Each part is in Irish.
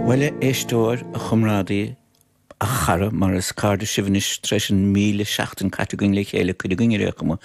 Bhuel, a éisteoir, a chomrádaí, a chara, mar is cairde sibh anois tar éis an míle seachtain a chaitheamh againn le chéile, cuid againn, ar aon chuma,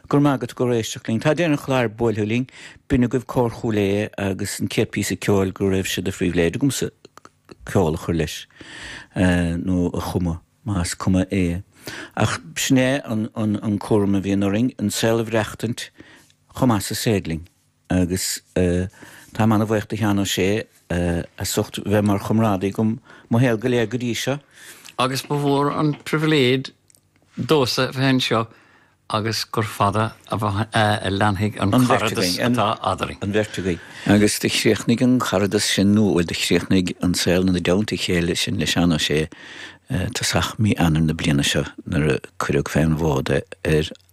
go raibh maith agat as éisteacht linn. Tá deireadh an chláir buailthe linn, b'in agaibh Cór Chúil Aodha agus an céad píosa ceoil go raibh sé de phribhléid agamsa ceol a chur leis, nó a chumadh, más cuma é. Ach b'shin é an cúram a bhíonn orainn, an saol a bhreachtaint chomh maith is is féidir linn. agus táim an-bhaoch do Sheán Ó Sé as ucht bheith mar chomrádaí agam mo shaol go léir go dtí seo. Agus ba mhór an pribhléid domhsa bheith anseo agus gur fada a leanfaidh an caradas atá eadarainn. an bheirt againn. Agus do chríochnaigh an caradas sin, nó bhuel, do chríochnaigh an saol i dteannta chéile sin le Seán Ó Sé tosach mí Eanair na bliana seo nuair a cuireadh fé an bhfód é ar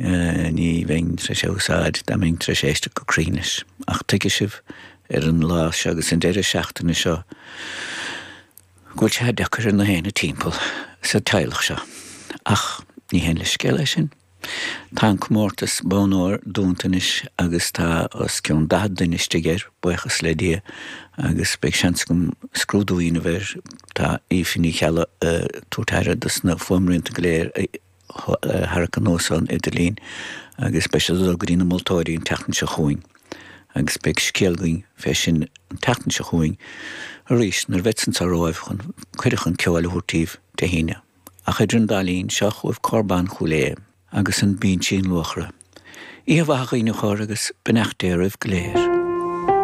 Ní bheinn tréis é úsáid dá mbeinn tréis éisteacht go cruinn leis. Ach tuigfidh sibh ar an lá seo agus an deireadh seachtaine seo go bhfuil sé deacair ar gach éinne timpeall sa teaghlach seo. Ach ní haon leithscéal é sin. Tá an comórtas Bonn Óir dúnta anois agus tá os cionn daichead duine istigh air, buíochas le Dia, agus beidh seans agam scrúdú a dhéanamh air. Tá Aoife Ní Cheallaigh ag tabhairt aire dos na fuaimrianta go léir. tharrac anuas an idirlíon agus beidh siad ag dul go dtí na moltóirí an tseachtain seo chugainn agus beidh scéal againn fé sin an tseachtain seo chugainn arís nuair a bhead anso romhaibh chun cuireadh chun ceoil a thabhairt daoibh Dé hAoine. Ach idir an dá linn, seo chugaibh Cór Ban Chúil Aodha. agus an Bínsín Luachra. Oíche mhaith a dhaoine chóir agus beannacht Dé oraibh go léir.